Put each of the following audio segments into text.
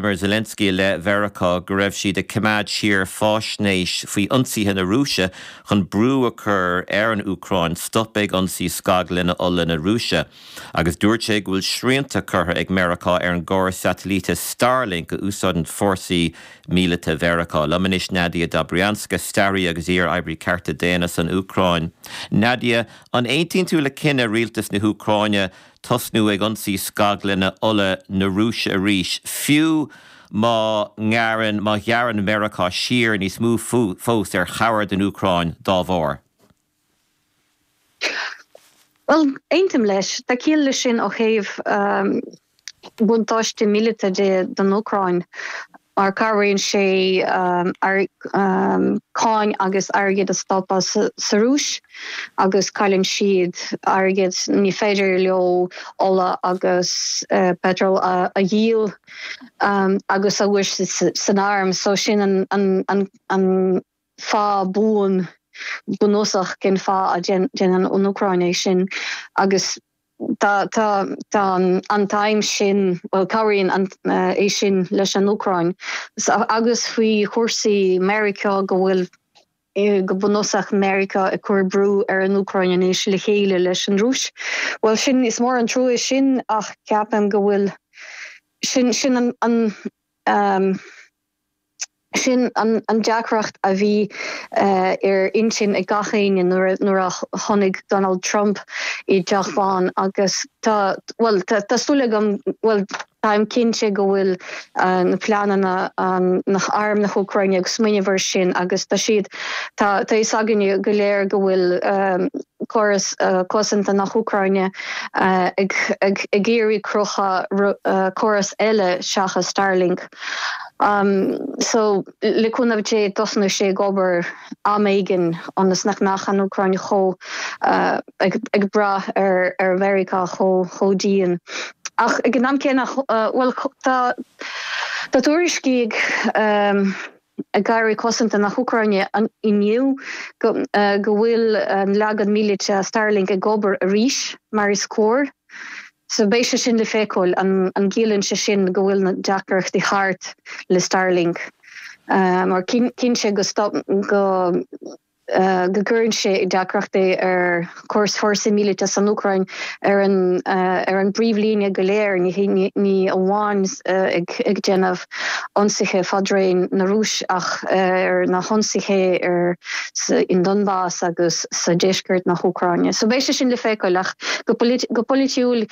Zelensky i leith Mheiriceá go raibh siad ag coimeád siar faisnéis faoi ionsaithe na Rúise chun brú a chur ar an Úcráin stop ag ionsaí scaglanna ola na Rúise agus dúirt sé go bhfuil srianta curtha ag Meiriceá ar an gcóras satailíte Starlink a úsáideann fórsaí míleata Mheiriceá. Liom anois Nadia Dobrianska, staraí agus iar-oibrí cearta daonna san Úcráin. Nadia, an aontaíonn tú le cinneadh rialtas na hÚcráine tosnú ag ionsaí scaglanna ola na Rúise arís, fiú má ngearrann, má ghearrann Meiriceá siar níos mó fós ar chabhair don Úcráin dá bharr? Bhuel, aontaím leis. Tá ciall leis sin ó thaobh buntáiste míleata de don Úcráin. mar cabhraíonn sé cáin agus airgead a stopadh sa Rúis agus cailleann siad airgead, ní féidir leo ola agus peitreal a dhíol agus a úsáid san arm, so sin an. fáth buan bunúsach cén fáth a dhéanann an Úcráin é sin agus tá an aidhm sin, bhuel cabhraíonn é sin leis an Úcráin agus faoi chúrsaí Meiriceá go bhfuil go bunúsach Meiriceá ag cur brú ar an Úcráin anois le chéile leis an Rúis. Bhuel sin, is mór an trua sin ach ceapaim go bhfuil, sin an. Sin an deacracht a bhí ar intinn ag gach éinne nuair a tháinig Donald Trump i dTeach Bán agus tá, bhuel, tá súil agam, bhuel, táim cinnte go bhfuil na pleananna ag arm na hÚcráine, ag smaoineamh air sin agus tá siad, tá a fhios againne go léir go bhfuil. córas cosanta na hÚcráine ag iarraidh cruthú córas eile seachas Starlink so le cúnamh Dé tosnóidh sé ag obair am éigin ionas nach mbeadh an Úcráin chomh ag brath ar ar Mheiriceá chomh dian ach ag an am céanna bhuel tá tá tuairiscí ag ag aire cosanta na hÚcráine inniu go bhfuil an leagan míleata Starlink ag obair arís mar is cóir. So beidh sé sin le feiceáil an gciallaíonn sé sin go bhfuil na deacrachtaí thart le Starlink mar cinnte go go gcuireann sé i ndeacracht é ar chóras fórsaí míleata san Úcráin ar an ar an bpríomhlíne go léir ní hé ní amháin ag ag déanamh ionsaithe fadraoin ar an Rúis ach ar na hionsaithe ar sa in Donbas agus sa deisceart na hÚcráine. So beidh sé sin le feiceáil ach go go polaitiúil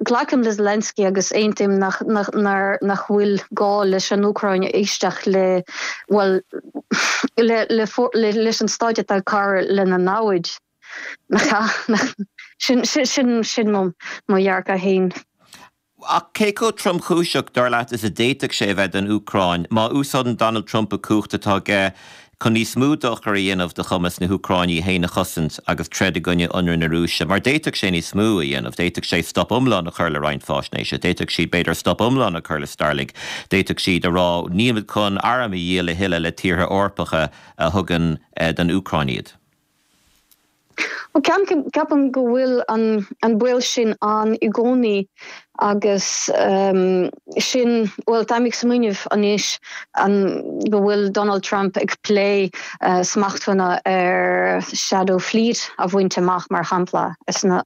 Glacaim le Zelensky agus aontaím nach bhfuil gá leis an Úcráin éisteacht le, bhuel, leis an stát atá ag cabhrú lena namhaid, nach ea? Sin mo dhearcadh féin. Ach cé chomh tromchúiseach, dar leat, is a d'fhéadfadh sé a bheith don Úcráin má úsáideann Donald Trump an chumhacht atá aige Chun níos mó dochair a dhéanamh do chumas na hÚcráine í féin a chosaint agus troid i gcoinne ionradh na Rúise, mar d'fhéadfadh sé níos mó a dhéanamh, d'fhéadfadh sé stop iomlán a chur le roinnt fáisnéise, d'fhéadfadh siad b'fhéidir stop iomlán a chur le Starlink, d'fhéadfadh siad a rá nílimid chun airm a dhíol a thuilleadh le tíortha Eorpacha a thugann don Úcráin iad. Ceapaim go bhfuil an baol sin ann i gcónaí agus sin, bhuel, táim ag smaoineamh anois go bhfuil Donald Trump ag plé smachtanna ar Shadow Fleet a bhaint amach, mar shampla, as na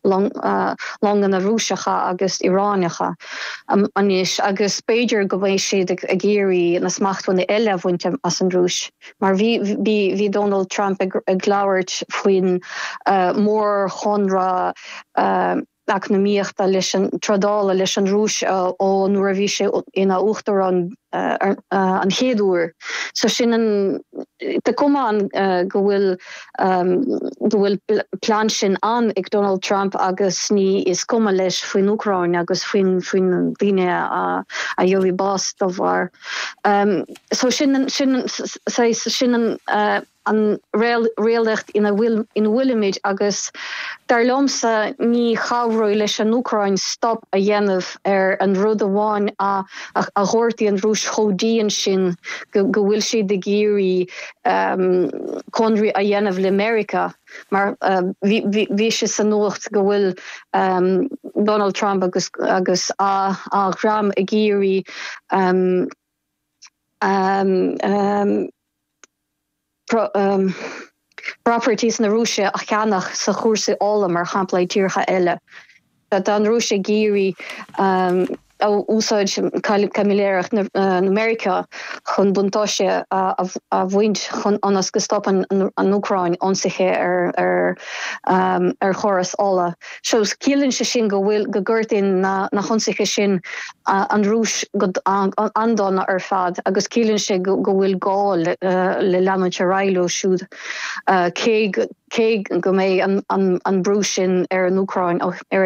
longanna Rúiseacha agus Iaránacha anois agus b'fhéidir go mbeidh siad ag iarraidh na smachtanna eile a bhaint as an Rúis. Mar bhí, bhí, bhí Donald Trump ag labhairt faoin mórchonradh eacnamaíochta leis an, trádála leis an Rúis ó nuair a bhí sé ina uachtarán an chéad uair. So sin an, tá cuma ann go bhfuil, go bhfuil plean sin ann ag Donald Trump agus ní, is cuma leis faoin Úcráin agus faoin, faoin daoine a gheobhaidh bás dá bharr. So sin an réalacht ina bhfuilimid agus dar liomsa ní chabhródh leis an Úcráin stop a dhéanamh ar an rud amháin a ghortaíonn an Rúis chomh dian sin go bhfuil siad ag iarraidh conradh a dhéanamh le Meiriceá. mar bhí sé sa nuacht go bhfuil Donald Trump agus a dhream ag iarraidh properties na Rúise a cheannach sa chúrsaí ola, mar shampla, i dtíortha eile. Tá an Rúis ag iarraidh a úsáid caimiléireacht na Meiriceá chun buntáiste a bhaint chun ionas go stopann an Úcráin ionsaithe ar chóras ola. So ciallaíonn sé sin go bhfuil, go ngortaíonn na hionsaithe sin an Rúis go han-dona ar fad agus ciallaíonn sé go bhfuil gá le leanúint ar aghaidh leo siúd cé Cé go mbeidh an brú sin ar an Úcráin ar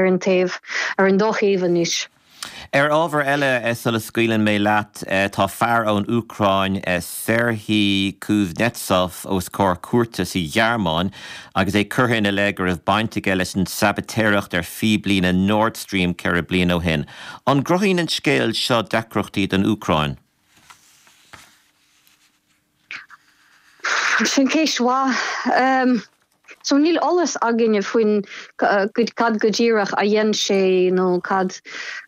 an taobh, ar an dá thaobh anois. Ar ábhar eile sula scaoileann mé leat, tá fear ón Úcráin, Serhiy Kuznetsov, os comhair cúirte sa Ghearmáin agus é curtha ina leith go raibh baint aige leis an tsabaitéireacht ar phíblíne Nord Stream 4 bliain ó shin. An gcruthaíonn an scéal seo deacrachtaí don Úcráin? Sin ceist an-mhaith. So níl eolas againne faoin cad go díreach a dhein sé nó cad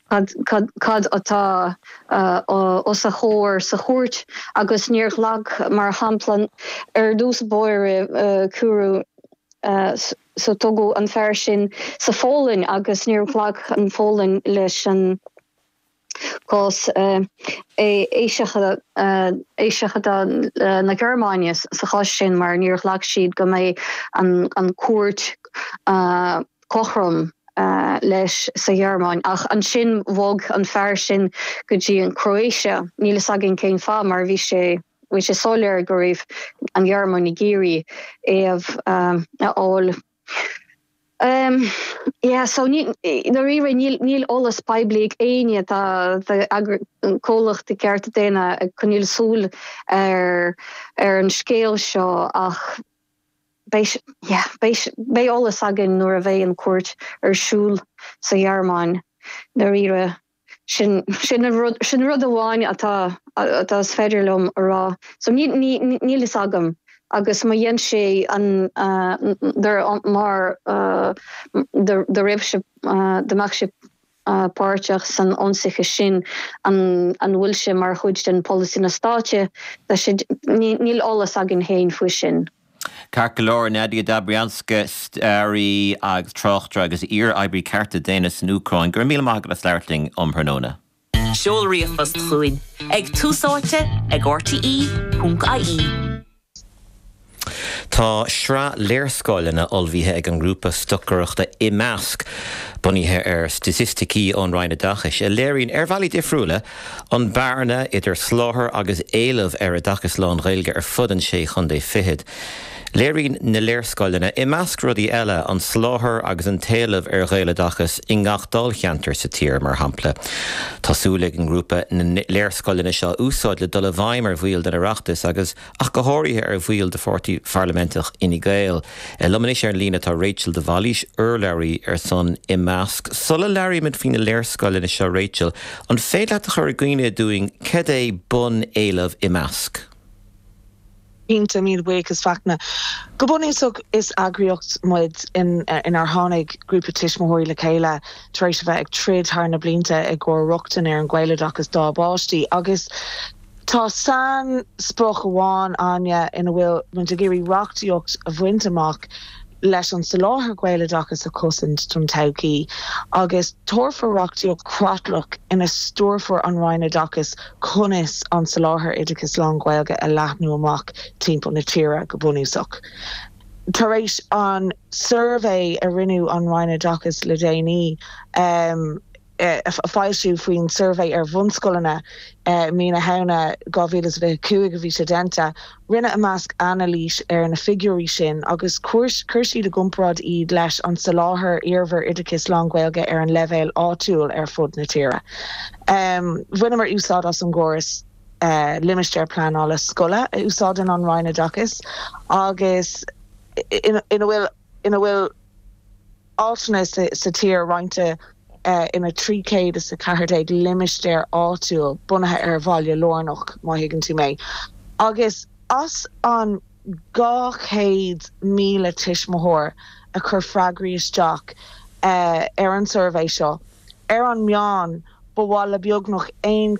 cad atá os a chomhair sa chúirt agus níor ghlac mar shampla ar dtús báire cuireadh so tógadh an fear sin sa Pholainn agus níor ghlac an Pholainn leis an cás eiseachadadh na Gearmáine sa chás sin mar níor ghlac siad go mbeidh an chúirt cothrom leis sa Ghearmáin ach ansin bhog an fear sin go dtí an Chroatia. Níl a fhios againn cén fáth mar bhí sé bhí sé soiléir go raibh an Ghearmáin ag iarraidh é a fháil. Níl eolas poiblí ag éinne atá ag comhlacht i gceart daonna ag coinneáil súil ar an scéal seo ach beidh eolas againn nuair a bheidh an chúirt ar siúl sa Ghearmáin. Sin an rud amháin atá is féidir liom a rá. So níl a fhios agam agus má dhein sé an mar dá raibh sé dá mbeadh sé páirteach san ionsaí sin an bhfuil sé mar chuid den polasaí na stáit níl eolas againn faoi sin. Ceart go leor, Nadia Dobrianska, staraí agus tráchtaire agus iar-oibrí cearta daonna san Úcráin, go raibh míle maith agat as labhairt linn um thráthnóna. Seol ríomhphost chugainn ag tusaite ag rte.ie. Tá sraith léarscáileanna ullmhaithe ag an ngrúpa stocaireachta Imeasc, bunaithe ar staitisticí ón Roinn Oideachais, a léiríonn, ar bhealaí difriúla, An bearna idir soláthar agus éileamh ar oideachas lán-Ghaeilge ar fud an Sé Chondae Fichead. Léiríonn na léarscáileanna, i measc rudaí eile, an soláthar agus an t-éileamh ar Ghaeloideachas i ngach dáilcheantar sa tír, mar shampla. Tá súil ag an ngrúpa na léarscáileanna seo a úsáid le dul i bhfeidhm ar bhaill an Oireachtas agus, ach go háirithe ar bhaill de pháirtí pharlaiminteach Fhine Gael. Liom anois ar an líne tá Rachel de Bhailís, urlabhraí ar son Imeasc. Sula labhraímid faoina léarscáileanna seo Rachel, an féidir leat a chur i gcuimhne dúinn cad é bunéileamh Imeasc? Cinnte, míle buíochas Fachtna. Go bunúsach is eagraíocht muid inár tháinig grúpa tuismitheoirí le chéile tar éis a bheith ag troid thar na blianta i gcomhair rochtain ar an Ghaeloideachas dá bpáistí agus Tá sain-sprioc amháin againn ina bhfuil muid ag iarraidh reachtaíocht a bhaint amach leis an soláthar Gaeloideachas a chosaint don todhchaí agus tabharfar reachtaíocht chreatlach ina stiúrfar an Roinn Oideachais conas an soláthar oideachais lán-Ghaeilge a leathnú amach timpeall na tíre go bunúsach. Tar éis an suirbhé a rinne an Roinn Oideachais le déanaí, a foilsiú faoin suirbhé ar bhunscoileanna i mí na Samhna 2025 a bhí sé déanta. Rinne Imeasc anailís ar na figiúirí sin agus chuir siad i gcomparáid iad leis an soláthar iarbhir oideachais lán-Ghaeilge ar an leibhéal áitiúil ar fud na tíre. Bhaineamar úsáid as an gcóras Limistéir Pleanála Scoile a úsáideann an Roinn Oideachais agus ina bhfuil. ina bhfuil áiteanna sa tír roinnte ina 314 limistéar áitiúil, bunaithe ar bhaile lárnach, má thuigeann tú mé. Agus as an 200,000 tuismitheoir a chuir freagraí isteach ar an suirbhé seo, ar an meán, ba mhaith le beagnach aon